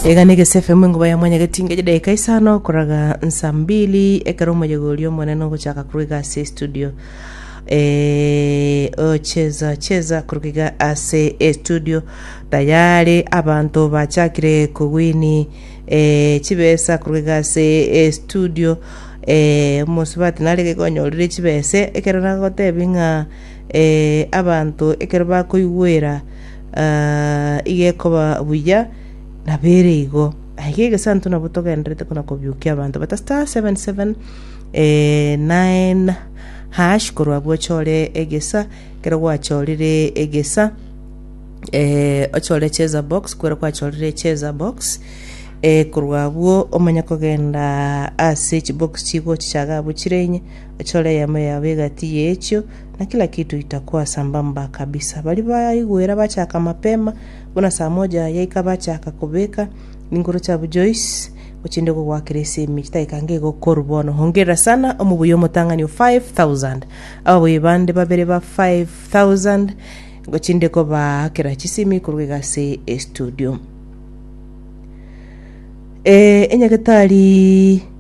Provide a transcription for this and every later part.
Egana egese FM enkuba ya mwanyageti ngeche dakika isano koraga nsa mbili ekero omoyega oria omonene ogochaka korwa iga ase estudio Eh, ocheza cheza korwa iga ase estudio tayari abanto bachakire kogwini eh, chibesa korwa iga ase estudio eh, omosubati nare gaiga onyorire chibese ekero nagotebi ng'a eh, abanto ekero bakoigwera Ah, iga ekoba buya nabere igo Aye gegesanto nabo togenderete kona kobiukia abanto bata star 77 eh, 9 hash korwa abwo ochore egesa kero gwachorire egesa eh, ochore cheza box kwero kwachorire cheza box eh, korwa abwo omanye kogenda ase chibox chigo chichaga abwo chire inye ochore eyemo yabo egati yechio na kila kitu itakuwa sambamba kabisa. Baria baigwera bachaka mapema, buna saa moja yaika bachaka kobeka ninguru chiabo Joyce ochinde kogwakera esemi chidakika nge igo koru bono. Hongerera sana omobuyi omotang'ani o 5000 ababuyi bande babere ba 5000 ngochinde kobaakera chisemi korwa iga ase estudio. Eh, enyagetari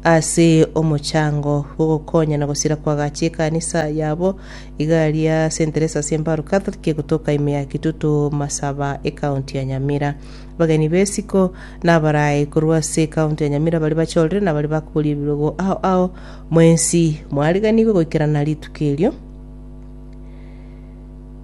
Ase omochango bw'ogokonya na gosira kw'agachi ekanisa yabo, Igaria St. Teresa's Embaru Catholic egotoka ime ya Kitutu Masaba ekaunti ya Nyamira. Abageni b'esiko na abaraai korwa ase ekaunti ya Nyamira baria bachorire na baria bakoboria ebirogo ao ao mwensi mwariganigwe goikerana rituko erio.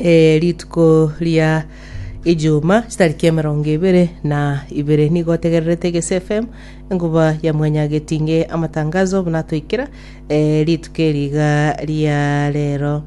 Eh, rituko ria ejuma chitariki emerongo ebere na ibere nigo otegererete gese fm enkuba ya mwanyagetinge amatangazo buna atoikera eh, rituko eriga ria rero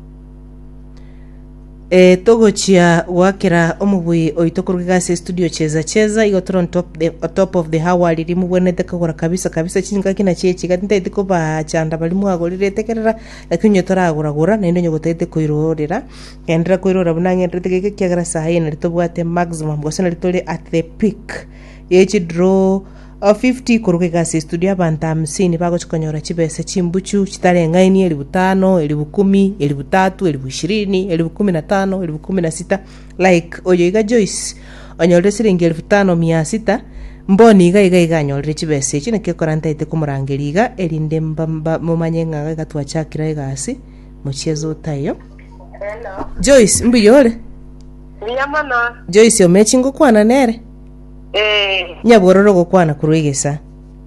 Eh, togochia gwakera omobui oito koruga gase studio cheza cheza igo toro on top, the, on top of the hour riri mobwenete kogora kabisa kabisa chingaki na chiechiga tintaiti kobachanda bari mwagorirete kerera Naki onye toragora-gora, naende onye gotagete koirorera, genderera koirorera buna ng'enterete geke, ekiagera saha eye nari tobwate maximum, gose nari tore at the peak ye chidraw of 50 koruga iga ase estudio abanto hamsini bagochi konyora chibesa chimbuchu chitareng'ainie elifu tano, elifu kumi, elifu tatu, elifu ishirini, elifu kumi na tano, elifu kumi na sita, Like oyo iga Joyce onyorire siringi elfu tano mia sita, Mboni iga iga iga anyorire chibesa echio naki ekora ntaete komorangeria iga erinde mba mba momanye ng'a iga iga twachakire egasi mochie zota eyo. Hello. Joyce mbuya ore? Buya mono. Joyce omechi ngokwana nere? Eh. Nyabwororo gokwana korwa egesa.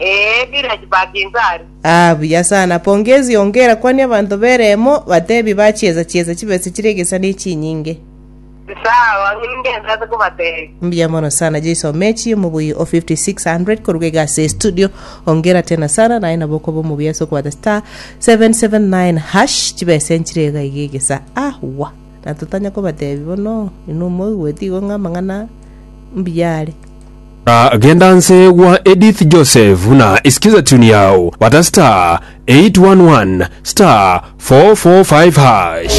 Ee, village ba Kinzari. Aa, buya sana. Pongezi ongera kwania abanto b'ereemo batebi bachiesa chiesa chibesa chire egesa ne chinyinge. Sawa, ng'ende ense ase kobatebia. Mbuya mono sana Jeiso Omechi, omobui o 5600 koruga iga ase estudio. Ongera tena sana, naye nabo okoba omobuya ase okobata star 779 hash chibesa enchire iga iga egesa. Aahwa. na totanya kobateebia bono, inwe moigweti igo ng'a amang'ana mbuya are. Na genda nse gwa Edith Joseph na isikiza tune yao bata star 811 star 445 hash.